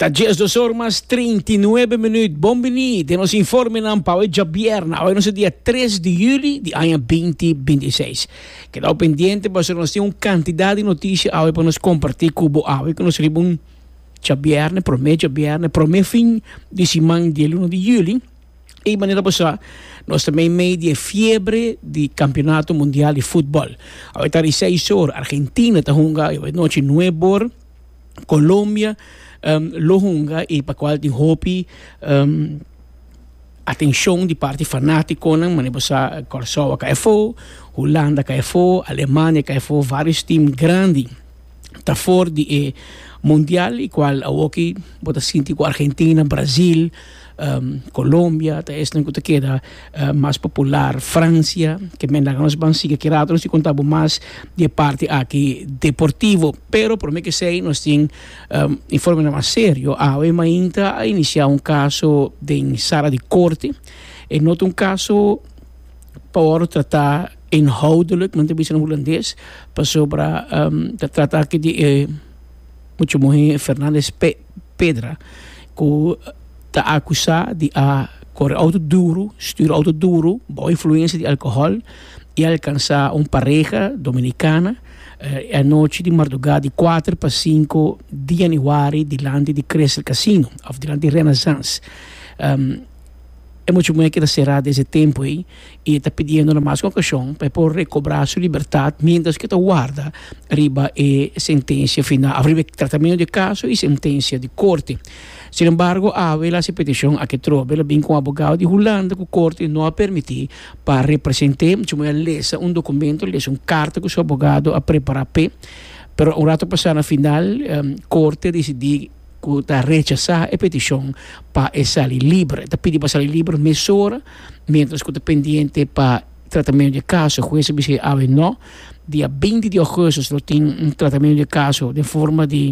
Ta diesdos or mas treinta i nuebe minuut. Bon biní den nos informenan pa awe djabièrna. Awe nos a dia tres di juli di aña beinti binti seis. Kedau pendiente pasobra nos tin un kantidat di notishi awe pa nos kompartí ku bo. Awe ku nos riba un djabièrna, promé djabièrna, promé fin di siman di e luna di juli, Y manera bo sa, nos ta mei mei di e fiebre di Campeonato Mundial di Futbol. Awor ta di seis or, Argentina ta hunga, e nochi nuebe or Colombia lo hunga y pa cual tin hopi atencion di parti fanaticonan. Manera bo sa, Curacao a cay afo, Hulanda a cay afo, Alemania a cay afo, varios team grandi. ta for di e mundial y cual awor aki bo ta sinti cu Argentina, Brasil, Colombia ta esnan cu ta keda mas popular, Francia, ke men nan nos ban sigui aki rato nos tin cu contabo mas di e parti aki deportivo, pero prome kesey nos tin informenan mas serio, awe mainta a inicia un caso den sala di corte, e no ta un caso. pa wòrdu tratá inhoudelik, men ta bisa na hulandes, pasobra ta trata aki di e mucha muhé Fernandez Pedra ku ta akusá di a kore outo duru, stura outo duru bou influensia di alkohòl i alkansá un pareha dominikana e anochi di mardugá di kuater pa sinku di yanüari dilanti di Crescent Casino òf dilanti di Renasans. E mucha muhé keda será des e tempu ei i e ta pidiendo na mas un okashon pa e por rekobrá su libertat miéntras ku e ta warda riba e sentensia final of riba e tratamentu di e kaso i sentensia di korte. Sin embargo, Avila si petishon aki trobe lo bin ku un abogado di Hulanda ku korte no a permití pa a represent'é. Mucha muhé a lesa un dokumento, a lesa un karta ku su abogado a prepará p'e, pero un ratu pasá na final korte a disidí, ku ta rechasá e petishon pa e sali liber. E ta pidi pa sali liber mesora miéntras ku ta pendiente pa tratamentu di e kaso. E hues a bisa e awe nò. Dia beinti di ougustus lo tin un tratamentu di e kaso den forma di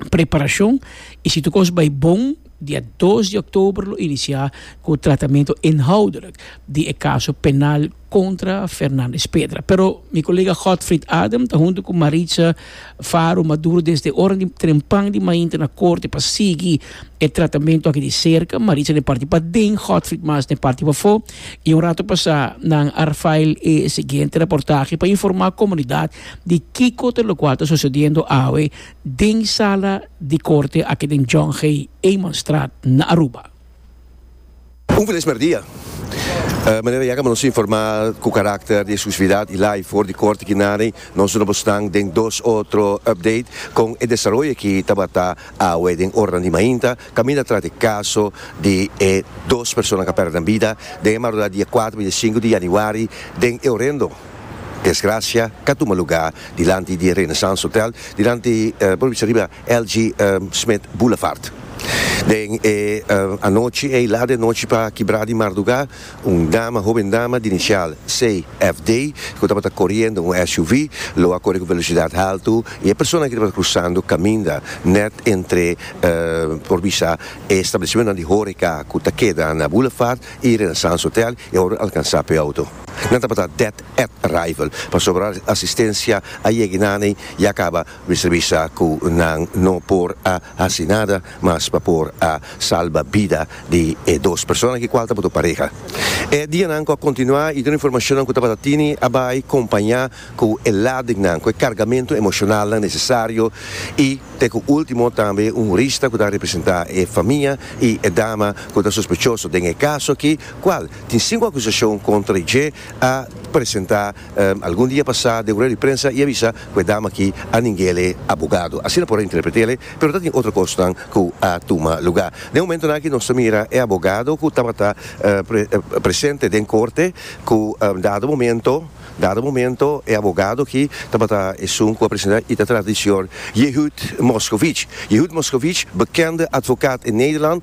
preparashon i si tur kos bai bon dia dos di òktober lo inisiá ku tratamentu inhoudelijk di e kaso penal. contra Fernandez Pedra. Pero mi colega Godfried Adam ta hunto cu Maritza Faro Maduro desde ora di trempan di mainta na corte pa sigui e tratamento aki di cerca. Maritza n'e parti paden, Godfried mas n'e parti pafo. Y un rato pasá nan a fail e siguiente reportahe pa informa comunidad di kico ta locual ta sucediendo awe den sala di corte aki den John J. Eman Straat na Aruba. Un felis merdia! Manera ya nos a informa cu carácter di exclusividad y lay for di corte aki naden, nos duna bo snan den dos otro update con e desaroyo aki tabata awe den oranan di mainta caminda tras di caso di e dos personanan cu a perde nan bida den e madrugada di dia cuater bini dia sinku di januari den e horendo desgracia ca tuma lugar dilanti di Renaissance Hotel dilanti por bisa riba LG. Smith Boulevard. Den e anochi ei, lat den nochi pa kibra di mardugá, un dama, hoben dama, di inisial CFD, ku tabata koriendo un SUV, lo a kore ku velosidat haltu i e personanan ku tabata krusando kaminda nèt entre, por bisa, e establesimentunan di hóreka ku ta keda na Boulevard i Renaissance Hotel, e wòrdu alkansá p'e outo. Nan tabata dead at arrival, pasobra asistensia a yegi nan ei, ya kaba. Mi ta bisa ku nan no por a hasi nada mas pa por a salba bida di e dos persona ki kual tabata pareha. E dianan ku a kontinuá i tur informashonnan ku tabata tini a bai kompañá ku e ladingnan ku e kargamentu emoshonalnan nesesario i te ku último tambe un rista ku ta representá e famia i e dama ku ta sospechoso den e kaso akí kual tin sinku akusashon kontra dje a presentá Algun dia pasá den un rueda di prensa i a bisa ku e dama aki a ningel e abogado. Asina por a interpretel e, pero ta tin otro kosnan ku a tuma lugá. Den momentunan aki nos ta mira e abogado ku tabata presente den korte ku dado momento dado momento e abogado aki tabata esun ku a presentá i ta trata di señor Yehud Moscovic. Yehud Moscovic, bekende advokat in Nederland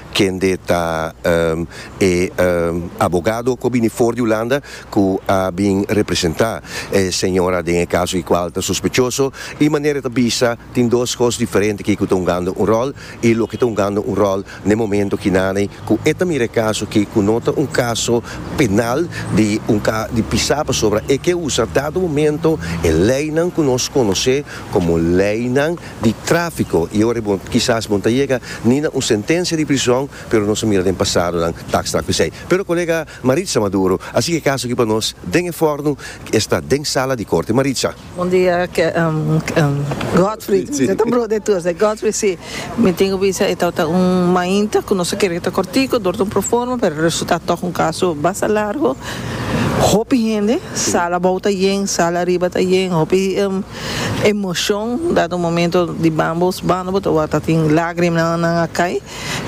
kende ta e abogado ku a bini for di Hulanda ku a bin representá e señora den e kaso di kual ta sospechoso i manera e ta bisa tin dos kos diferente kiko ta hungando un ròl i loke ta hungando un ròl na e momento kinanen ku e ta mira e kaso ke ku no ta un kaso penal di un di pisá pasobra e ke usa dado momento e leinan ku nos konosé komo leinan di tráfiko i ora bo kisas bo no ta yega ni na un sentensia di prison pero nos a mira den pasadonan ta akstrá ku esei. Pero kolega Maritza Maduro a sigui e kaso aki pa nos den e fòrnu ku e sta den sala di korte. Maritza. Bon dia Godfrid, mi ta bro de tur esei. Godfrid, si, mi tin ku bisa e tabata un mainta ku nos a kere ku ta kòrtiku dor ta un proforma pero a resultá tòg un kaso basta largu. Hopi hende, sala abou ta yen, sala ariba ta yen, hopi. Emocion dado momento di bambos banda bo ta wata tin lagrima nan a cay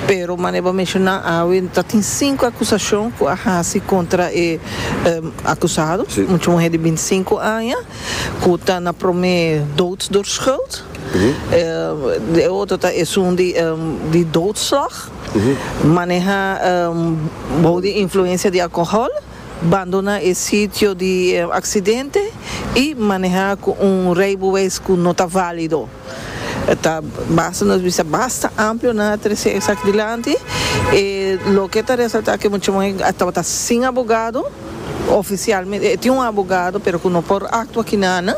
pero manera bo a menciona awe ta tin cinco acusacion cu a haci contra e acusado mucha muher di binti cinco aña cu ta na prome dood door schuld e otro ta esun di doodslag maneha bou di influencia di alcohol. Bandona e sitio di e aksidente i maneha ku un reibuweis ku no ta válido ta basta nos bisa basta amplio na trese e sak dilanti. E loke ta resaltá ku e muchaman ei a tabata sin abogado ofisialmente, e tin un abogado pero ku no por aktua kina nan.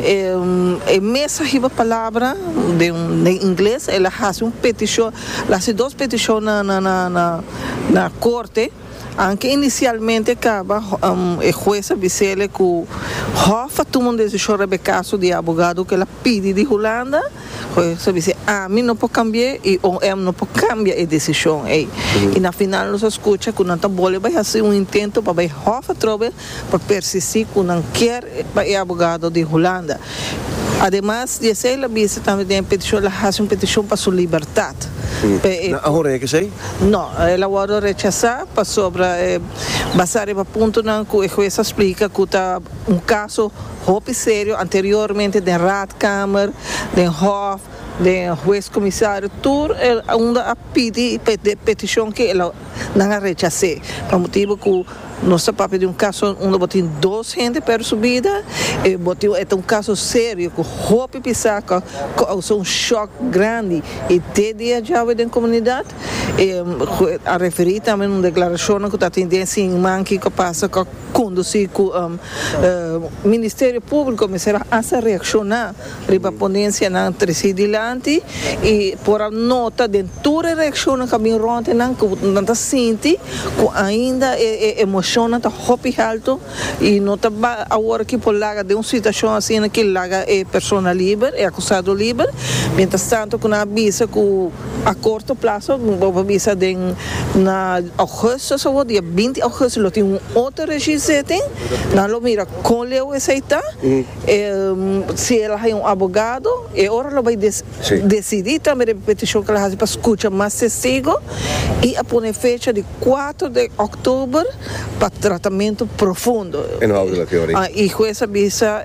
E mes a hiba palabra den ingles, el a hasi un petishon, el a hasi dos petishon na korte. Anke inisialmente kaba, e hues a bis'ele ku hòf a tuma un desishon riba e kaso di e abogado ku el a pidi di Hulanda. Hues a bis'é, Ami no por kambi'é i OM no por kambia e desishon ei. I na final nos a skucha ku nan ta bole bai hasi un intento pa bai hòf atrobe pa persistí ku nan kier pa e abogado di Hulanda. Ademas di esei el a bisa tambe den e petishon el a hasi un petishon pa su libertat. Nan a horea esei? No, el a wòrdu rechasá pasobra basá riba puntonan ku e hues a splika ku ta un kaso hopi serio anteriormente den Raadkamer, den Hof, den Hues Komisario tur unda a pidi pa e petishon ke el a Nan a rechas'é pa motibu ku nos ta papia di un kaso unda bo tin dos hende pèrdè su bida i bo tin e ta un kaso serio ku hopi pisaka kousa un shòk grandi i te dia djawe den komunidat. E a referí tambe un deklarashonnan ku ta tin den siman kiko a pasa ku kondusí ku Ministerio Públiko mester a hasta reakshoná. Riba ponencianan treci dilanti y por a nota den tur e reaccionnan cu a bin rond di nan cu nan ta sinti cu ainda e emocionnan ta hopi halto y no ta bay awor aki por laga den un situacion asina ki laga e persona liber, e acusado liber, mientras tanto cu nan a bisa cu a corto plazo, bo a bisa den na augustus awor, dia binti augustus lo tin un otro registro zitting, nan lo mira con leu esey ta Si el a haña un abogado, e ora lo bai decidí tambe riba e petishon k'el a hasi pa skucha mas testigo i a pone fecha di kuater di òktober pa tratamentu profundo. E hues a bisa,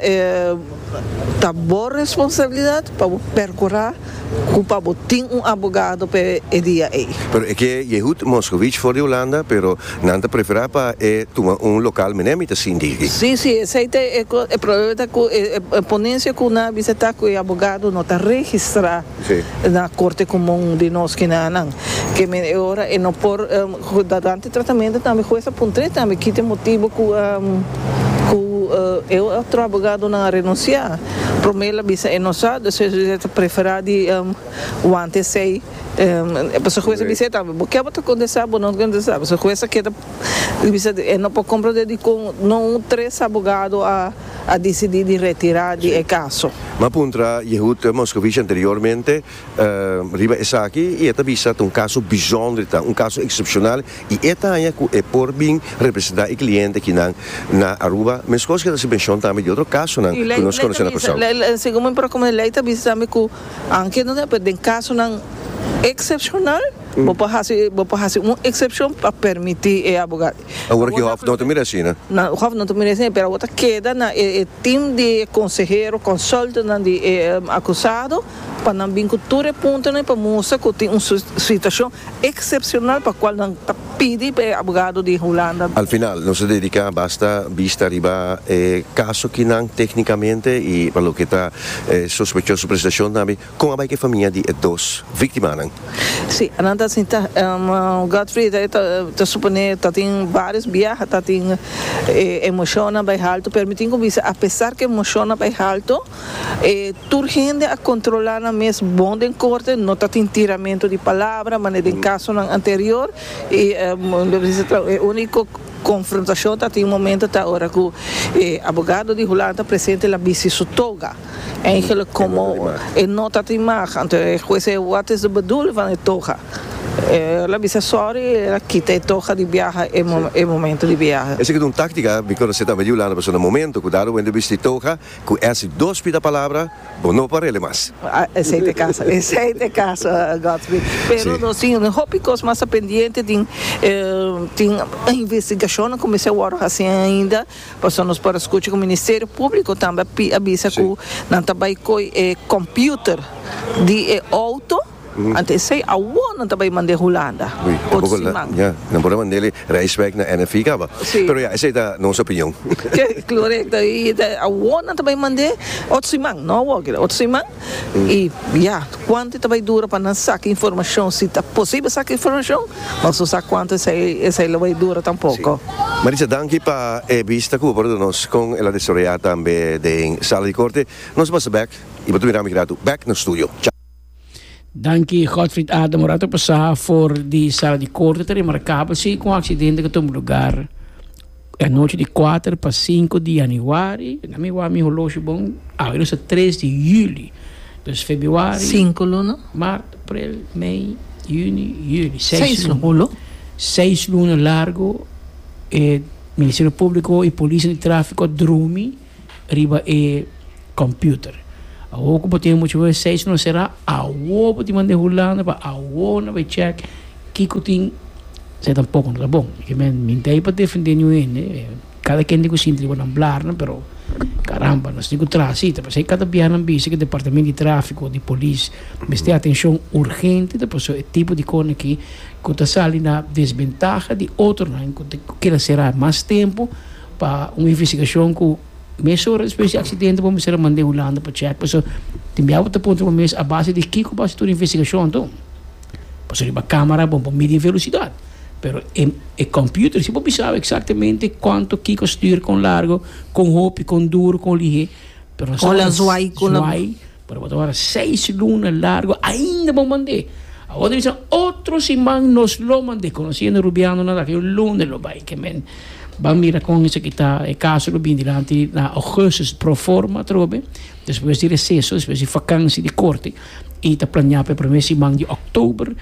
Ta bo responsabilidat pa bo perkurá Cu pa bo tin un abogado pa e dia ey. Pero e ke Yehud Moskowitz for di Hulanda, pero nan ta prefera pa e tuma un local mené mi ta sin di aki. Sí, sí, esey ta e cos, e problema ta cu e ponencia cu nan a bisa ta cu e abogado no ta registra na Corte Comun di nos ki na nan, keme e ora e no por Durante tratamento tambe hues a puntr'é tambe kita e motibo ku ku e otro abogadonan a renunsiá. Promé el a bisa e no sa, despues a bisa e ta preferá di wanta esei. Pasobra hues a bisa e tambe, bo ke bo ta kontestá, bo no ta kontestá. Pasobra hues a keda bisa di e no por komprondé dikon no un tres abogado a a disidí di retirá di e kaso. M'a puntra Yehud Moscovici anteriormente Riba esaki i e ta bisa ta un kaso bishonder i ta un kaso eksepshonal i e ta haña ku e por bin representá e kliente kinan na Aruba. Meskos ke ta hasi menshon tambe di otro kasonan ku nos konosé na Kòrsou. Segun mi propio opinion, lei ta bisa tambe ku aunke no ta pero den kasonan eksepshonal bo por hasi bo por hasi un eksepshon pa permití e aboga. Awor ki hòf no ta mira asina. Na hòf no ta mira asina pero awor ta keda na e tim di e konsehero, konsultnan di e akusado. pa nan bin ku tur e puntonan pa mustra ku tin un situashon eksepshonal pa kual nan ta pidi pa e abogado di Hulanda. Al final nos ta dediká basta bista riba e kaso ki nan téknikamente i pa loke ta e sospechoso presentashon tambe, kon a bai ku e famia di e dos víktimanan. Sí, nan ta sinta. Godfried e ta suponé ta tin vários biaha, ta tin e emoshonnan bai haltu, pero mi tin ku bisa apesar ku e emoshonnan bai haltu, E tur hende a kontrolá nan mes bon den korte, no tatin tiramentu di palabra manera den kasonan anterior, i e úniko konfrontashon tatin momento ta ora ku e abogado di Hulan ta presente la bisti su toga, eingèlek komo e no tatin mag, anto e hues zei wat is de bedoeling van e toga? E la bisa sòri i el a kita e toga di biaha e momento di biaha. Esei ta un táktika, mi konosé tambe di Hulanda, pasobra momento ku Darwin ta bisti toga, Cu ese dos pida palabra bo no parele mas. Esey t'e caso, esey t'e caso Godsby. Pero nos tin un hopi cos masa pendiente, tin tin investigacionnan cu mester wordo haci ainda, pasobra nos por a scucha cu Ministerio Publico tambe a bisa cu nan ta bay coy e computer di e auto. Ante esei awor nan ta bay mand'e Hulanda ot siman. Ya, nan por a mand'e reis bek na NFV caba. Si. Pero ya, esei ta nos opinion. Ke, clorecto, y ta awor nan ta bay mand'e ot siman, no awor kere, ot siman, y ya, cuanto e ta bay dura pa nan saca informacion, si ta posibel saca informacion, nos no sa cuanto esei, esei lo bay dura tampoco. Si. Maritza, danki pa e bista cu bo por a duna nos con el a desarroya tambe den Sala di Corte. Nos pasa bek y bo ta mira ami grato bek na studio. Chao. Danki Godfried Adam un rato pasá for di sala di korte ta remarká pa si ku un aksidente ku tuma lugar anochi di kuater pa sinku di yanüari na mi wak mi holoshi bon awe nos ta tres di yüli dus febuari Sinku luna. mart aprel mei yüni yüli seis Seis luna luna. seis luna largu e ministerio públiko i polis di tráfiko a drumi. riba e computer. Awor cu bo tin e mucha websites lo cera, awor bo tin manda e hulanda pa awor no bay check kico tin se tampoco no ta bon. Asina que mi no ta ahi pa defende niun hende, cada kende cu sinti riba nan blarnan, pero caramba nos tin cu traha si ta pasey cada biaha nan bisa cu departamento di trafico o di polis mester atencion urgente ta pasobra e tipo di cosnan aki cu ta sali na desventaha di otronan cu keda cera mas tempo. pa un investigashon ku mes ora despues di aksidente bo mester a mand'é Hulanda pa chèk pasobra tin bia bo ta puntra bo mes a base di kiko bo a hasi tur e investigashon tu pasobra riba kámara bo por midi e velosidat pero e kòmputer si bo bisaba eksaktamente kuantu kiko a stuur kon largo kon hopi kon duru kon lihé pero zwaai. Pero bo ta wara seis luna largo ainda bo mand'é. Awor ta bisa otro siman nos lo mand'é, conociendo Rubiano nan ta ke un luna e lo bai. Ke men ban mira kon esaki ta, e caso lo bin dilanti na augustus pro forma atrobe, despues di receso, despues di vakansi di corte, y ta planea p'e primer siman di october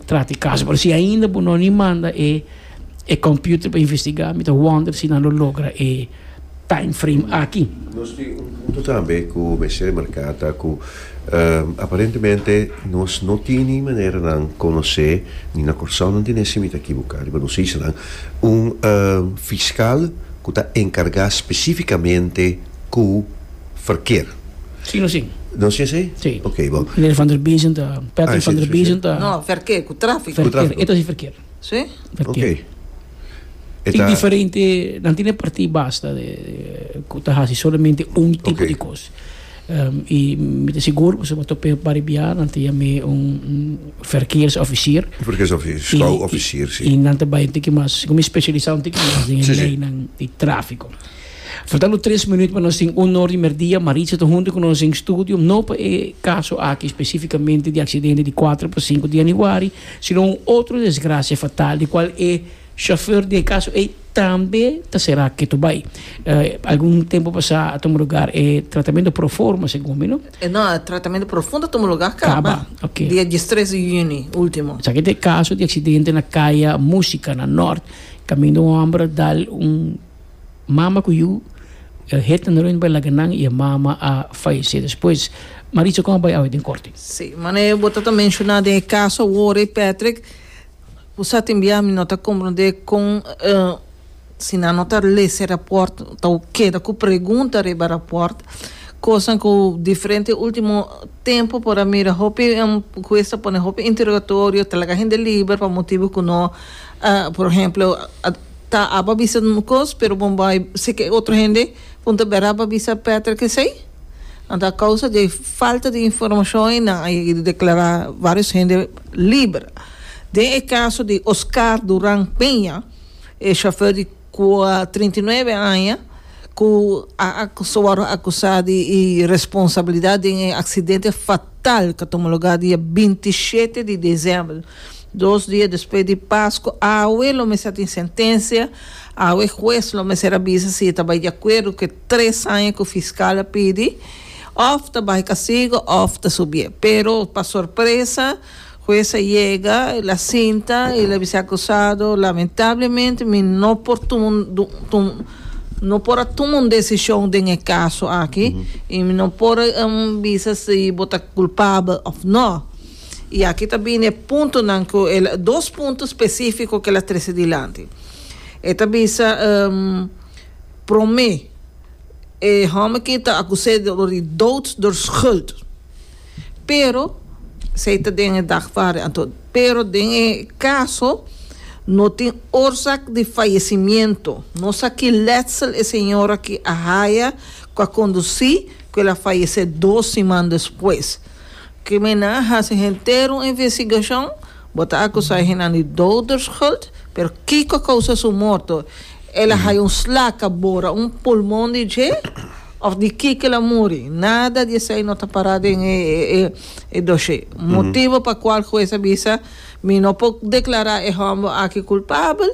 trata e caso. Pero si ainda bo no a ni manda e computer pa investiga, mi ta wonder si nan lo logra e. timeframe aki. Nos tin un punto tambe cu mester remarca ta cu aparentemente nos no tin ni maneranan conoce, ni na Corsou nan tin ese, mi ta ekibuca riba nos isla, un fiscal cu ta encarga specificamente cu verkeer. Si nos tin. Nos tin así? Si. Ok, bon. Meneer Van der Biesen ta, Patrick Van der Biesen ta. No, verkeer, cu trafico. Cu trafico. Verkeer, e ta si verkeer. Sí. Ok. E ta. Diferente, nan tin e partí basta de ku ta hasi solamente un tipo okay. di kos. Um, y mi te sigur ku se mo tope baribia nan te yame un verkeersofficier. Verkeersofficier, schouwofficier, sí. Y nan te bai un tiki mas, como especialisa un tiki mas den sí, lei nan di tráfico. Faltando tres minuut pa nos tin honor di merdia. Maritza ta junto con nos en studio. No pa e caso aki específicamente di accidente di 4 pa 5 di januari. sino un otro desgracia fatal di cual e chauffeur di e caso ey tambe ta sera ketu bay. Algun tempo pasa a tuma lugar e tratamento proformo segun mi no? No, e tratamento profundo a tuma lugar caba dia diestres di juni ultimo. Esaki ta e caso di accidente na Caya Musica na Nort caminda un homber a dal un. mama ku yu e het nan reuní pa laga nan i e mama a fayesé despues. Maritza kon a bai awe den korte? Sí, manera bo ta ta menshoná den e kaso awor ei Patrick, bo sa tin bia mi no ta komprondé kon si nan no ta lesa e rapòrt ta bo keda ku pregunta riba rapòrt, kosnan ku diferente último tempu por a mira hopi hues ta pone hopi interogatorio, ta laga hende liber pa motibu ku no por ehemplo. Ta a pa bisa un cos pero bon bay sek e otro hende con ta bera pa bisa Patrick esey anto a causa di falta di informacion y nan a yega di declara varios hende liber den e caso di Oscar Duran Peña e chauffeur di cua trinta y nuebe aña cu a ta wordo acusa di y responsabilidad den e accidente fatal cu a tuma lugar dia binti shete di december Dos dia despues di Pascu awe lo mester a tin sentencia, awe e huez lo mester a bisa si e ta bai di acuerdo cu e tres aña cu fiscal a pidi of ta baha e castigo of ta subi'e. Pero pa sorpresa huez a yega el a sinta y el a bisa e acusado lamentablemente mi no por no por a tuma un decision den e caso aki y mi no por bisa si bo ta culpabel of no. I aki ta bini e puntonan ku el, dos punto spesífiko ku el a trese dilanti. E ta bisa, Promé, e hòmber aki ta akusá dor di dout dor skuld, pero esei ta den e dagvaardig, anto pero den e kaso no tin orsak di fayesimiento, no sa ki letsel e señor aki a haya ku a kondusí ku el a fayesé dos siman despues. Kriminal hasi henter un investigashon, bo ta akusá henda di doderschuld, pero kiko a kousa su morto? El a haya un slaka bora un pulmon di dje òf di kiko el a muri? Nada di esei no ta pará den e doshé. Motibu pa kual hues a bisa, Mi no por deklará e hòmber aki kulpabel,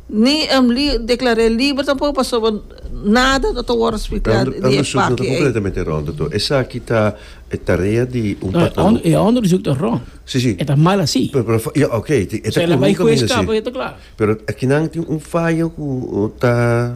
Ni Emily declar'é liber tampoco pasoba nada no ta worde splicá di e paki ei. E hondo resulta no ta completamente rond to. Esaki ta e tarea di un patrono. No, e hondo resulta ta rond. Si, si. E ta mal así. Pero, pero, ya, ok, e ta corrupto así. Pero akinan tin un faya cu ta.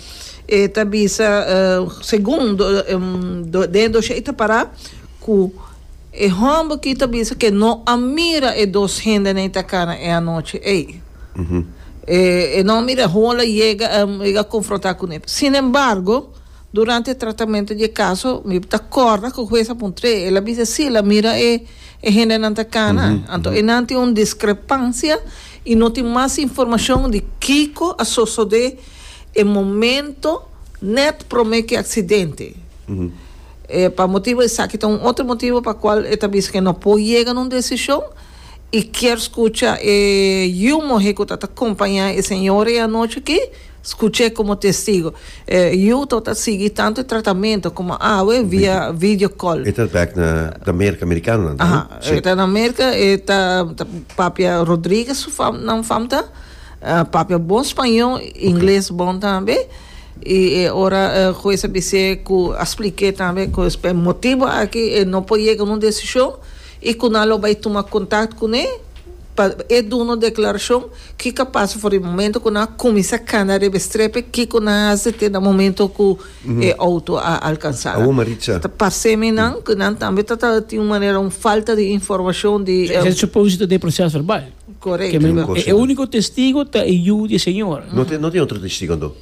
E ta bisa segun den doshe i ta para ku e hòmber ki ta bisa ke no a mira e dos hende na e takana e anochi ei. E no a mira hol a yega a konfrontá ku ne. Sinembargo, durante e tratamentu di e kaso mi ta kòrda ku hues a puntr'é, el a bisa si el a mira e hendenan takana. Anto enan tin un diskrepansia i no tin mas informashon di kiko a sosodé. E momento net prome ki aksidente. E pa motibu esaki ta un otro motibu pa kual e ta bisa ku e no por yega na un desishon i kier skucha e yu muhé ku ta ta kompañá e señora ei anochi aki, skuch'é komo testigo. E yu tabata ta sigui tantu e tratamentu komo awe via video kòl. E ta bèk na na Merka Merikanonan, ahan? Aha, e ta na Merka, e ta papia Rodriguez su fam, nan fam ta. Papia bon spañó, ingles bon tambe i e ora e hues a bis'é ku a splik'é tambe ku es p'e motibu aki e no por yega un desishon i ku nan lo bai tuma kontakt kuné pa e duna un deklarashon ki ka pasa for di momentu ku nan a kuminsá kanda riba e strepe kiko nan a hasi te na momentu ku e outo a alkansá la. Ta pars'é mi nan ku nan tambe ta tin un manera un falta di informashon di. He supposed to do e proseso verbal. Correcto. Keme Kiko e uniko testigo ta e Yu di e Señor. No tin no tin otro testigo anto?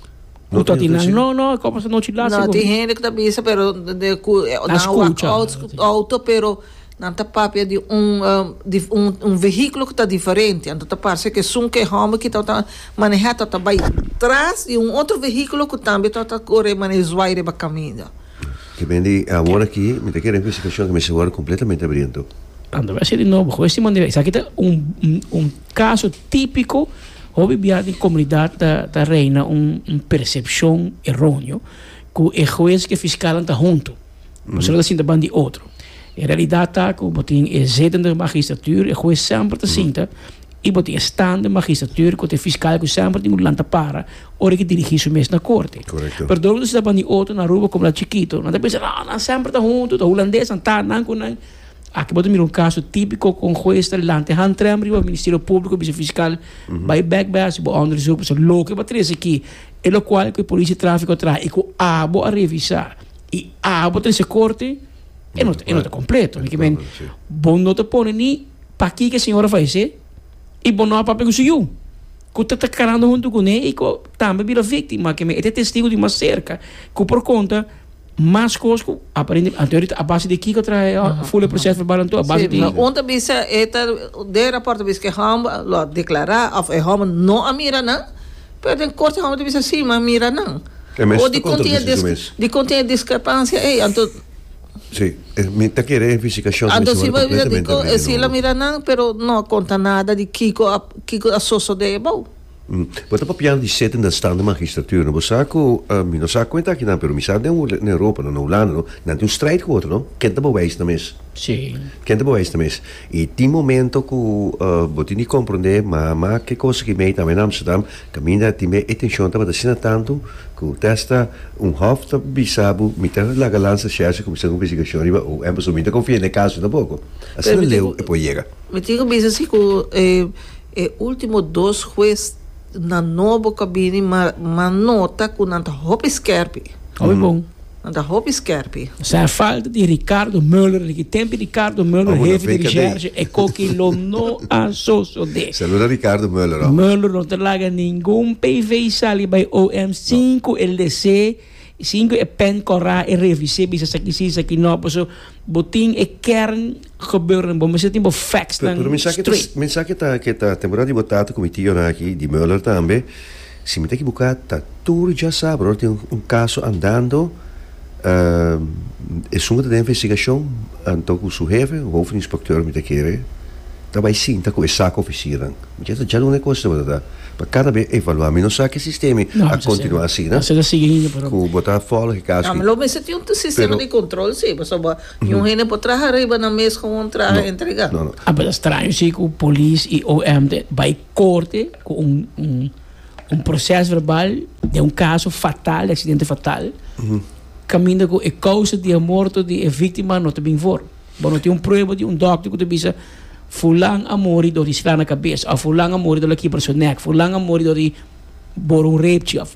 Ku ta tin nan? No no e kos pasa no chi lasa No, tin kopi. hende ku ta bisa pero de ku e A nan wak skucha. outs outo pero nan ta papia di un dif un un vehíkulo ku ta diferente anto ta parse ku esun ku e hòmber ki tabata manehá tabata bai tras di un otro vehíkulo ku tambe tabata kore manera zwaai riba kaminda. Ke men di awor aki mi ta kere un felicitashon ke mi siñor ta kompletamente abriento. Ando mi a ser di nobo hopi si manera esaki ta un un kaso tipiko hopi bia den komunidat ta ta reina un un persepshon eronio ku e hues ku e fiskalnan ta huntu pasobra bo ta sinta banda di otro e realidat ta ku bo tin e zétende magistratuur e hues semper ta sinta i bo tin e stand den magistratuur ku ta e fiskal ku semper tin ku lanta para ora ke dirigí su mes na korte. Pero dor ku nan sita bandí oto na Aruba komo nan chikito nan ta pensa no nan semper ta huntu ta hulandes nan ta nan ku nan aki bo ta mira un kaso tipiko ku un hues ta lanta e hantrèm riba ministerio públiko bisa fiskal bai bèk bai hasi bo onderzoek pasobra loke bo a trese aki e lokual ku e polisia tráfiko a traha i ku abo a revisá i abo a trese korte e no ta kompleto bo no ta pone ni Pakiko e señor a fallecé y bo no a papia cu su yu, cu ta ta carando hunto cuné y cu tambe bira victim? Ma keme e ta e testigo di mas cerca cu por conta mas cos cu aparente, anto ahorita a base di kiko a traha e fula e proces verbal anto? A base di. Si, un ta bisa e ta den raport ta bisa cu e homber lo a declara of e homber no a mira nan, pero den corte e homber ta bisa si, mi a mira nan. E mes ta contradici su mes. Di con tin e discrepancia ey anto. Sí, eh, mi ta kere e fisikacion. Anto si bo bisa di ko e sila mira nan, pero no a konta nada di kiko a kiko a sosode e bou. Mm. Bo ta papiando di sete den stand di magistratura, no? Bo sa ku, uh, mi no sa kuenta aki nan, pero mi sa den den Europa, no, na Hulanda, no, nan tin un strijd ku otro, no? Ken ta bo wijs nan mes? Sí. Ken ta bo wijs nan mes? I tin momento ku, uh, bo tin di komprondé, mama, ke kosa ku i mei tambe na Amsterdam, Caminda tin be e tension tabata asina tanto cu testa un hof ta bisa bo mi ta laga lansa Scherzi cuminsa un investigacion riba OM pasobra mi no ta confia n'e caso tampoco. Asina leu e por yega. Mi tin cu bisa si cu e ultimo dos huez nan nobo cu a bini ma nota cu nan ta hopi skerpi. Oibon. Nan ta hopi skerpi. Sa falta di Ricardo Muller di ki tempi Ricardo Muller hefi di rishershi e koki lo no a sosode. Saluda Ricardo Muller homber. Muller no ta laga ningun PV sali bai OM sin ku e lese sin ku e pen kora e revise bisa saki si saki no paso bo tin e kern Gebeurden bo mester tin bo facts nan straight. Mi sa ke ta ke ta temporada di bo tata ku mi tio nan aki di Mueller tambe si mi ta ekibuká ta tur dja sa brother tin un kaso andando esun ku ta den investigashon anto ku su hefe hoofd inspekteur mi ta kere ta bai sinta ku e sak ofisiernan mi ta dja duna e kos ta botata pa kada be evaluá mi no sa ke sistemi a kontinuá asina ku bo ta folg e kaso aki. Lo mester tin un sistema di kontrol si pasobra. Y un hende por traha riba nan mes con un traha entrega. A basa straño si cu polis y OM ta bay corte cu un proces verbal den un caso fatal, di accidente fatal, caminda cu e causa di e morto di e victima no ta bin for. Bo no tin un prueba di un dokter cu ta bisa fulan a muri dor di sla na cabes of fulan a muri dor di la kibra su nek, fulan a muri dor di bor un reepchi of.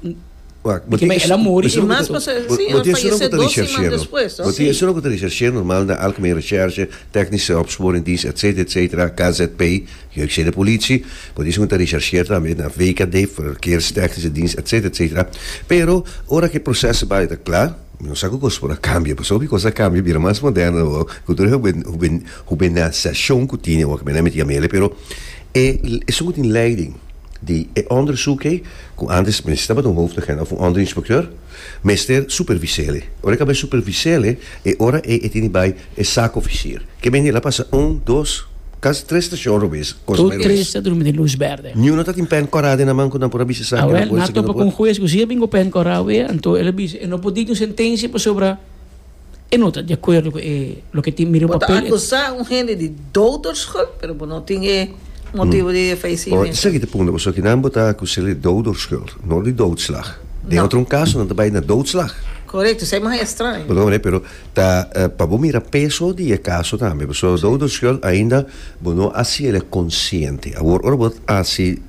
Wacht, bo tin Dik'e el a muri i mas pasa si a fayesé dos siman despues, no? Bo tin esun loke ta recherch'é normal na Algemeen Recherche, Technische Opsporingdienst etcetera etcetera, KZP, Jeugdgezinde Politie, bo tin esun ta recherch'é tambe na VKD, Verkeerstechnische Dienst etcetera etcetera, pero ora ku e proseso bai ta kla mi no sa ku kos por a kambia pasobra ku e kos a kambia a bira mas moderno awor ku tur e huben huben hubenasashon ku tini awor ku men a miti amele pero E esun ku tin leiding di e onderzoek ei, ku antes mester tabata un hoofdagent of un onderinspekteur, mester superviséle. Ora e kaba superviséle, e ora ei e tin di bai e saakofisier. Ke manera a pasa un, dos, kas tres stashon robes, konsa mai robes. Tur tres ta drumi den lus bèrdè. Niuno ta tin pèn kòrá den nan man ku nan por a bisa sa ke nan por i sa ke nan por. Awèl nan a topa ku un hues ku si a bin ku pèn kòrá wei, anto el a bisa e no por diki un sentensia pasobra. E no ta di acuerdo cu e loke tin mira e papel. Bo ta acusa un hende di doderschuld, pero bo no tin e motibo di e fallecimento. Esaki ta e punto, pasobra kinan bo ta acus'el di doderschuld, no di doodslag. Den otro un caso nan ta bay na doodslag. Correcto, esey mas extraño. Bo ta comprende, pero ta pa bo mira peso di e caso tambe, pasobra doderschuld ainda bo no haciel e consciente. Awor ora bo haci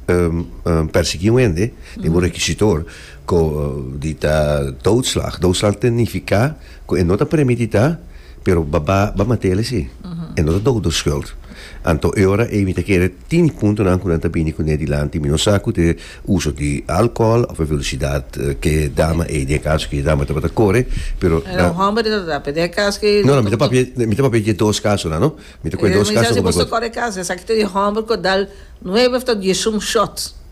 persegui un hende den bo requisitor, Cu di ta doodslag. Doodslag ta nifica cu e no ta permiti ta, pero baba ba matel esi. E no ta dodo schuld. Anto e ora ey mi ta kere tini puntonan cu nan ta bini cu ne dilanti. Mi no sa cu t'e uso di alcohol of e velocidad cu e dama ey, den e caso cu e dama tabata core, pero nan. Era un homber ta tratá, pero den e cas cu. No, no, mi ta papia, mi ta papia dje dos casonan, no? Mi ta coge dos caso. Mi ta si boso core caso, esaki ta di homber cu a dal nuebe of ta diesum shots.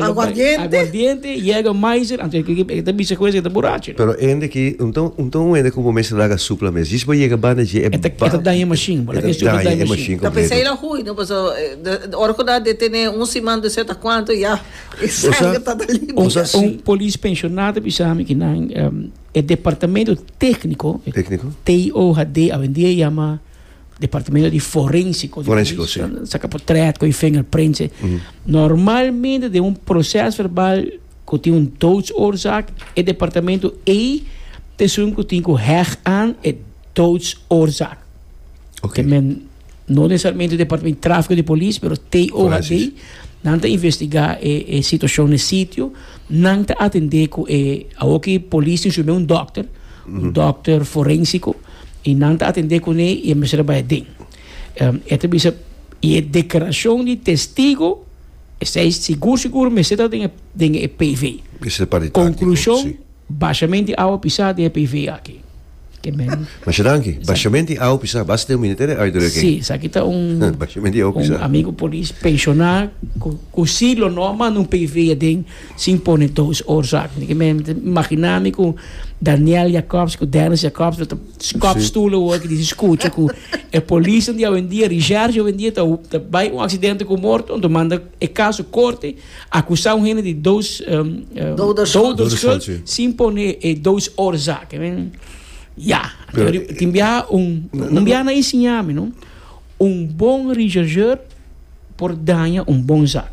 Aguardiente, Jäger Meiser, anto e kiki, e ta bisa ku esei ta burachi, no? Pero hende ki, un ta un ta un hende ku bo mester laga sup la mes. Djis bo yega banda dje e ba. E ta daña e mashin, bo laga e sup daña e mashin kompleto. Ta pensa el a hui, no? Paso ora ku nan a detene un siman dor seta kuantu ya e sanger ta ta limpia. Un polis penshona ta bisa mi ku nan e departamento tekniko, TIOHD, awendia e yama. Departamento di Forensico. Forensico, si. Sa ka por trèt ku e vinger print. Normalmente den un proses verbal ku tin un doodsoorzaak, e departamento ei ta esun ku tin ku hèg aan e doodsoorzaak. Te men, no nesesariamente departamento di Tráfiko di Polis, pero TOHD, nan ta investigá e situashon na e sitio, nan ta atendé ku e, awoki polis tin su mei un dòkter, un dòkter forensiko. y nan ta atende cune y e mester a bay aden. E ta bisa, y e declaracion di testigo, esey sigur sigur mester ta den e PV. Mester para di tactico, si. Conclusion, bashament di awa pisa den e PV aki. Ke men. Masha danki. Bashament di awa pisa basa den Ministerio di Uiterui aki. Si, esaki ta un. Bashament di awa pisa. Un amigo polis penshona cu si lo no a manda un PV aden. Sin pone dos oorzaken. Di ke me ta imaginá mi ku Daniel Jacobs ku Dennis Jacobs lo ta skòp stulen oor ku disi skucha ku e polisnan di awendia, Richards di awendia ta ta bai un aksidente ku morto anto manda e kaso korte, akusá un hende di dos doderskuld sin pone e dos oorzaken. Men ya, tin biaha un un biaha nan ensiña mi no un bon richargeur por daña un bon zak.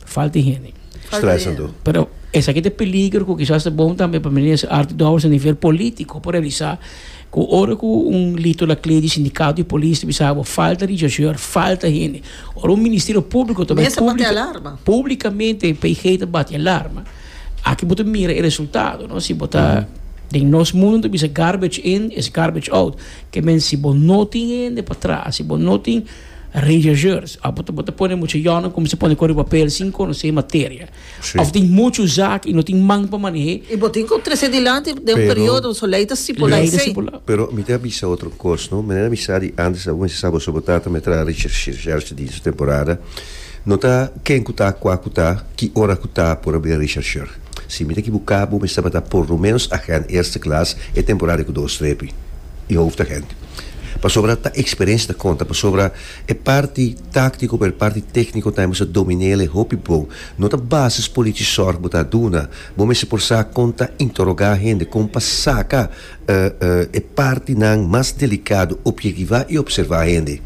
Falta di hende. Stresando. Pero esaki ta peligro ku kisas ta bon tambe pa minister Artie Dowers a nivel polítiko por realisá ku ora ku un Lito Lakle di Sindikato di Polis ta bisa bo falta richausheur, falta hende. Ora un Ministerio Públiko ta bai públi públikamente PG ta bati e alarma aki bo ta mira e resultado, no? Si bo ta den nos mundu nan ta bisa garbage in is garbage out ke men si bo no tin hende pa traha, si bo no tin Rechercheurs a bo ta pone mucha yonan como se pone kore papel sin conoce materia of tin mucho zak y no tin man pa manehe. Y bo tin cu trece dilanti den un periodo so ley ta stipula esey. Pero mi ta bisa otro cos no manera mi sa di antes aun si sa boso bo tata me traha recherche di su temporada no ta ken cu ta cua cu ta ki ora cu ta por a bira rechercher si mi ta ekibuca bo mester ba ta por lo menos agen eerste klas e temporada cu dos trepi. e hoofdagent. Pasobra ta experiencia ta conta, pasobra e parti tactico bo e parti tecnico ta mester dominel e hopi bo no ta basis polici zorg bo ta duna, bo mester por sa con ta interroga hende, con pa saca e partinan mas delicado, objektiva y observa hende.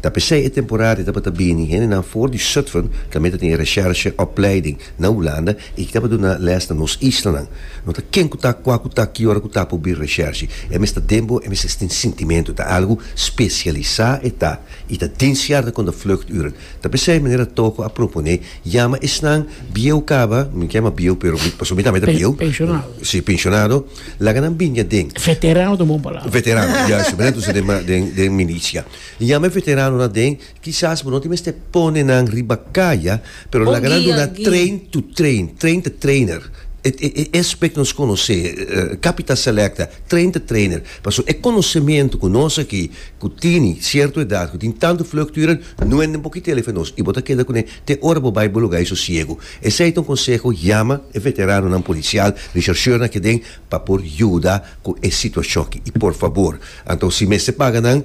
Ta pesey e temporada y tabata bini hendenan for di Zutphen tambe ta tin e recherche opleiding. Na Hulanda e ki taba duna les na nos islanan. No ta ken ku ta, kua ku ta, ki ora ku ta pa obi reshershi. E mester den bo, e mester tin sintimentu. Ta algu spesialisá e ta. I ta den sierde konda vluchturen. Ta p'esei manera Toko a proponé, yama esnan bieu kaba, mi kema bieu pero mi pasobra mi tambe ta bieu. Penshonado. Sí, penshonado. Laga nan bini aden. Veterano ta un bon palabra. Veterano, juisto. Manera ta usa den den milisia. Yama e veteranon aden Kisas bo no tin mester pone nan riba kaya, pero laga nan duna train to train, train the trainer. E e e aspect nos konosé, Capita Selecta, train the trainer. Paso e konosementu ku nos aki ku tini sierto edat, ku tin tantu vlugturen, no e den bo kit'el ef e nos i bo ta keda kuné te ora bo bai bo lugá i sosiegu. Esei ta un konseho, yama e veteranonan polisial, rechercheurnan aki aden pa por yuda ku e situashonki. I por fabor, anto si mester paga nan.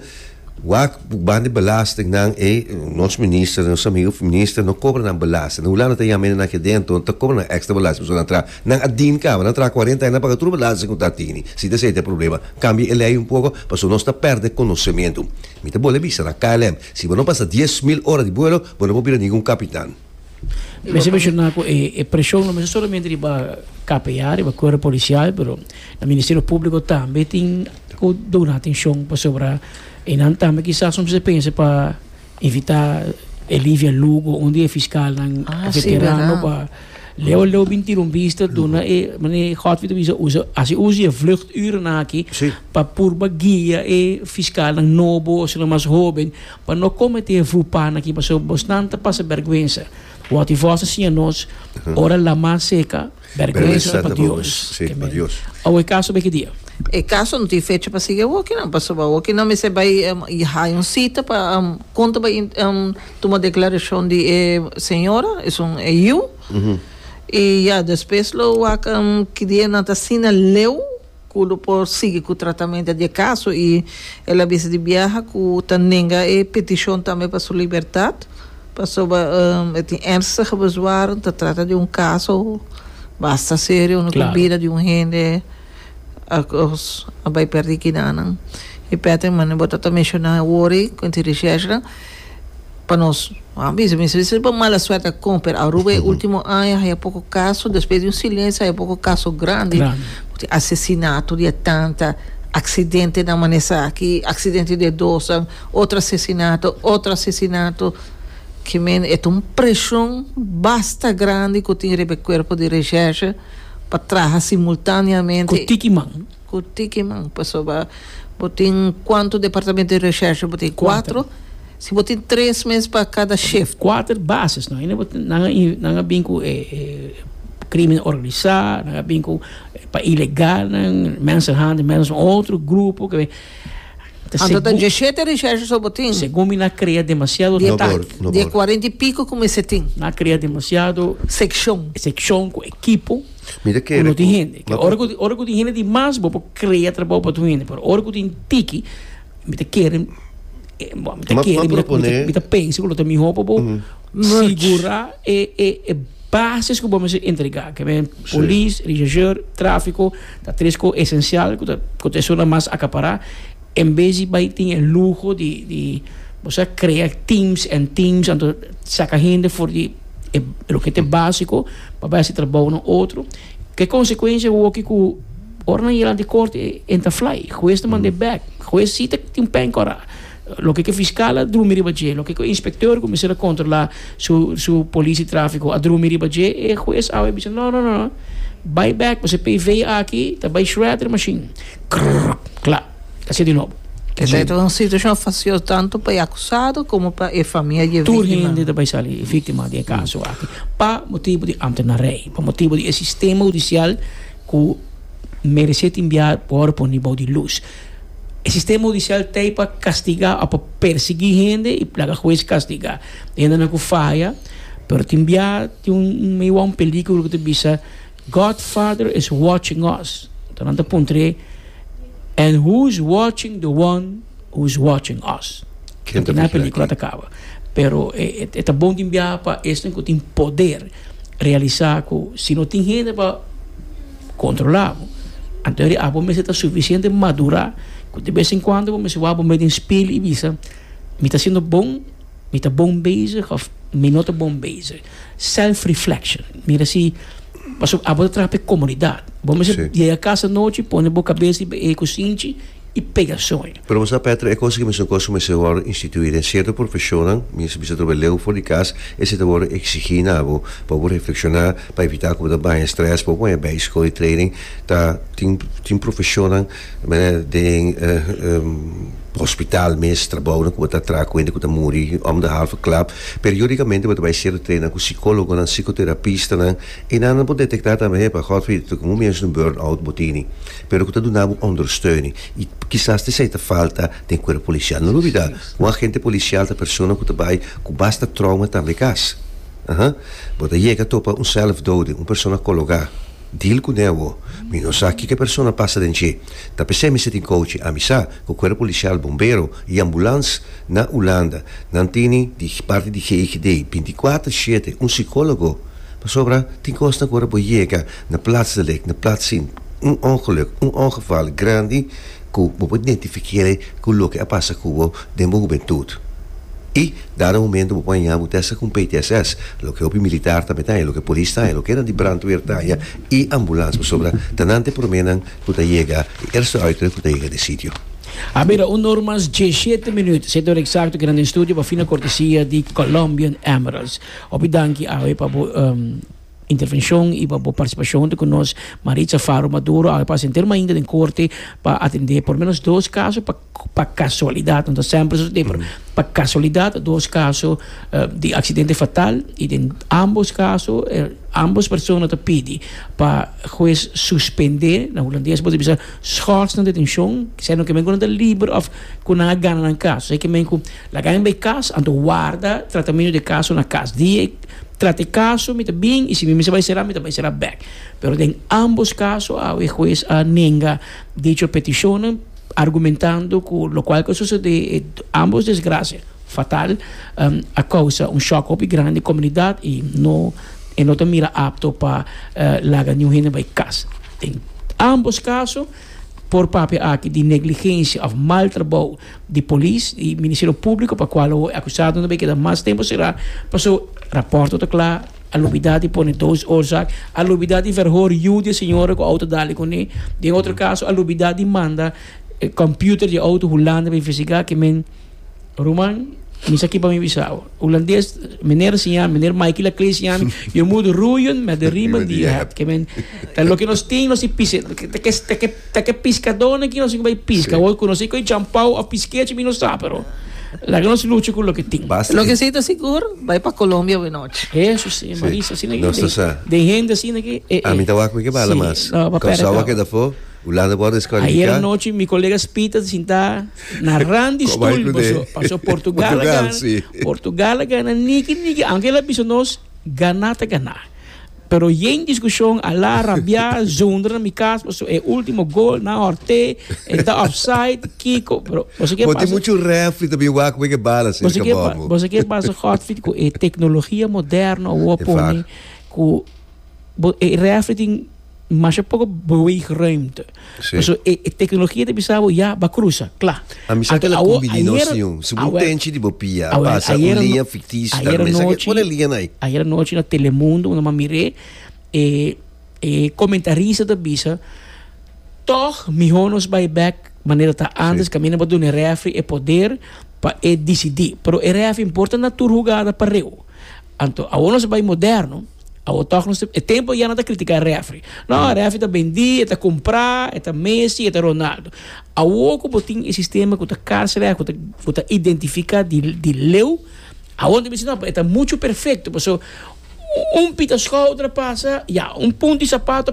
Wak ku ban di belastingnan ei nos minister nos amigo minister no kobra nan belasting den hulanda ta yama ene nan keda enton ta kobra nan extra belasting pasobra nan traha nan a din kaba nan traha cuarenta aña nan paga tur belasting ku ta tini si ta asei ta problema kambia e lei un poco pasobra nos ta perde conocemento mi ta bol'e bisa nan KLM si bo no pasa dies mil ora di buelo bo no por bira ningun capitan. Mester mencionar cu e, e presión no mester solamente riba KPA, riba cuerpo policial, pero el Ministerio Público también tin cu duna atención pasobra e nan también quizás soms pensa pa evitar Elivia Lugo, un día fiscal nan Ah, sí, veterano verdad. pa Leo Leo bin tira un vista duna e meneer Godfrey te bisa usa hace uso je vluchturen aki Sí. pa purba guia e fiscal nan nobo o sino mas hoben pa no kometé e vupana ki pasó bosnan ta pasa bèrgwensa wòt i vòs ta siña nos ora lamá seka bèrgwensa pa Dios amén awe e kaso bai ki dia? E kaso no tin fecha pa sigui awoki nan pasobra awoki nan mester bai haya un sita pa kon ta bai tuma deklarashon di e señora esun e yu i ya despues lo wak ki dia nan ta asina leu. cu lo por sigui cu tratamento di e caso y el a bisa di biaha cu ta nenga e peticion tambe pa su libertad pasobra e tin ernstige bezwaarden, ta trata di un caso basta serio unda cu bida di un hende a bay perdi kinanan y Patrick mane bo ta ta menciona wori cu e tin recherche nan. Pa nos, a bisa mi sali pa mala suerte a con, pero Aruba e ultimo aña haya poco caso, despues di un silencio haya poco caso grandi, di asesinato, di atanta, accidentenan mane esaki, accidente di dosan, otro asesinato, otro asesinato, ki men e ta un presion basta grandi cu tin riba e cuerpo di recherche pa traha simultaneamente. Cu tiki man, pasobra bo tin cuanto departamento di recherche? Bo tin cuatro? Si bo tin tres mes pa cada shift. Cuater bases no. Ainde bo tin, nan a bin cu e crimen organisa, nan a bin cu pa ilegalnan, mensenhandel, mensenhandel es un otro grupo que. Anto ta diecisiete recherche so bo tin. Segun mi nan crea demasiado detalle. Di e cuarenta y pico cu mester tin. Nan a crea demasiado. Seccion. Seccion cu ekipo. Mi ta kere ku Ora ku tin hende di mas bo por krea trabou pa tur hende pero ora ku tin tiki mi ta kere mi ta pensa ku lo ta mihó pa bo sigura e bases ku bo mester entrega ke men polis regisseur trafiko ta tres ko esensial ku ta esuna mas akapará. En bes di bai tin e luho di di bo sa crea teams en teams anto saca hende for di e loke ta e basico pa bai haci trabaonan otro ke consecuencia bo hopi cu ora nan yega lanti corte e hen ta fly huez ta manda e back huez si ta tin pen cora loke ke fiscal a drumi riba dje loke ke inspector cu mester a controla su su policia trafico a drumi riba dje e huez awe a bisa no no no bai back pasobra PV aki ta bai shredder e machine. Cla. Ta sido di nobo. Esta e ta un situacion facios tanto pa e acusado como pa e famia di e víctima. Tur hende ta bay sali víctima di e caso aki pa motibo di ambtenarij, pa motibo di e sistema hudicial cu merece tin bia worde poni bou di luz. E sistema hudicial ta ey pa castiga of pa persegui hende y laga huez castiga hendenan cu faya pero tin bia tin un, mi wou un peligro cu ta bisa. God Father is watching us, enton nan ta puntra e, And who's watching the one who's watching us? Ken ta vigila kin? Pelikula ta kaba, pero e e ta bon tin biaha pa esnan ku tin poder realisa ku si no tin hende pa kontrola bo, anto riba bo mester ta sufisiente madura ku de bes en kuando bo mester wak bo me den spil i bisa, Mi ta hasiendo bon? Mi ta bon bezig òf mi no ta bon bezig? Self reflection mira si pasobra abo ta traha pa e comunidad bo mesora Si. yega casa nochi pone bo cabeza riba e cosinchi y pega soy. Pero bo sa Petro e cos aki mesora cos cu mester wordo institui den cierto profesionnan mira si bisa ta wordo leu for di cas esei ta wordo exigi na bo pa bo reflexiona pa evita cu bo ta baña stress pa bo baña bay school y training ta tin tin profesionnan Den hospital mes trabounan ku bo ta traha kuenta ku ta muri òm di halve klap. Periódikamente bo ta bai ser trena ku sikólogonan, psikoterapistanan i nan a por detektá tambe hepa, Godfrey, ta komo miéns un burn-out bo tini, pero ku ta duna bo ondersteuning. I kisas ta esei ta falta den kuerp polisial. No lo bida ku un agente polisial ta persona ku ta bai ku basta trouma tambe kas. Bo ta yega topa un sèlfdode, un persona kologá. Dil cu newo. Mi no sa kico e persona pasa den dje. Ta p'esey mester tin coche. Ami sa cu cuerpo policial, bombero y ambulans na Hulanda nan tini di parti di GIGD binti cuater shete un psicologo. Pasobra tin cosnan cu ora bo yega na plats delek, na plats sin, un ongeluk, un ongeval grandi, ku bo por identifiker'e ku loke a pasa ku bo den bo hubentut. I dado momento bo por haña bo testa ku un PTSS, loke hopi militar tambe ta haña, loke polis ta haña, lokenan di brandweer ta haña i ambulans, pasobra ta nan te promenan ku ta yega, e eerste uitere ku ta yega den sitio. A mira un nur mas diesshete minüt, sete ora eksakto kinan den studio pa fina kortesia di Colombian Emeralds. Hopi danki awe pa bo. Intervenshon i pa bo partisipashon huntu ku nos Maritza Faro Maduro awe pasa henter mainta den korte pa atendé por lo menos dos kaso pa pa kasualidat no ta semper susedé pero pa kasualidat dos kaso di aksidente fatal i den ambos kaso ambos persona ta pidi pa hues suspendé na hulandes bo ta bisa schors na detenshon kise no ke men ku nan ta liber òf ku nan a gana nan kas esei ke men ku laga nan bai kas anto warda tratamentu di e kaso na kas di e Trata e kaso mi ta bin i si mi mester bai será mi ta bai será bèk pero den ambos kaso awe e hues a nenga dicho petishonnan argumentando ku lokual ku a susedé e ambos desgrasia fatal a kousa un shòk hopi grandi komunidat i no e no ta mira apto pa laga niun hende bai kas den ambos kaso. Por papia aki di negligencia of mal trabou di polis y ministerio publico pa cual awo e acusadonan bay keda mas tempo cera paso raporto ta cla a lubida di pone dos oorzaak a lubida di verhoor yu di e señora cu auto dale cune den otro caso a lubida di manda computer di auto hulanda pa investiga ke men Ruman, mi sa ki pa mi bisa awa. Hulandes, meneer siña, meneer Michael a klei siña, yo moet roeien met de riemen die je hebt. Ke men, ta loke nos tin, nos i pise, ta ke, ta ke, ta ke, ta ke piskadonen ki nos i bai piska, wou ku nos i koi jampou of piskechi, mi no sa, pero laga nos lucha ku loke tin. Basta Loke si ta sigur, bai pa Colombia we nochi. Hesus siña, Si, Marisa, asina ke nos ta den, sa. den hende asina ke e, e. Ami ta wak mi ke bala Si, mas. no, papere Konsou a kaba. keda for, Hulanda por Ayer deskwalifiká. anochi mi kolegas Pieter ta sintá. Na randi stul paso paso portugal a gana portugal a gana niki niki aunke el a bisa nos gana ta gana pero yen diskushon a la rabia zunder na mi kas paso e ultimo gol na horte e ta offside kiko pero boso kier pasa mucho refri ta bin wak wek e bala serka bomo boso kier pasa Godfrid ku e teknologia moderno awo a pone ku e refri tin masha poko beweeg ruimte. Sí. Paso e, e tecnología ta bisa bo ya ba cruza, cla. A misa que la Awo- cumbidi no ayer- siun. Si awer- un tenchi di bo pia, awer- pasa un ayer linea ano- ficticio. ayer Tal vez aquí anoche- pone linea ahí. Ayer anoche na Telemundo, una man miré, eh, eh, comentarista ta bisa, toch mihor nos bai back manera ta antes, Sí. que mina ba duna e referee e poder pa e decidi. Pero e referee importa na tur jugada pareu. Anto awor nos a bai moderno, awor tòg nos ta, e tempo ya nan ta kritika refri, no e refri ta bendí, e ta kumprá, e ta Messi, e ta Ronaldo. Awor ku bo tin e sistema ku ta karsrèf, ku ta ku ta identifiká di di leu, awor nan ta bisa no e ta muchu perfekto, pasobra un pita skòu ta pasa, ya un punti sapato.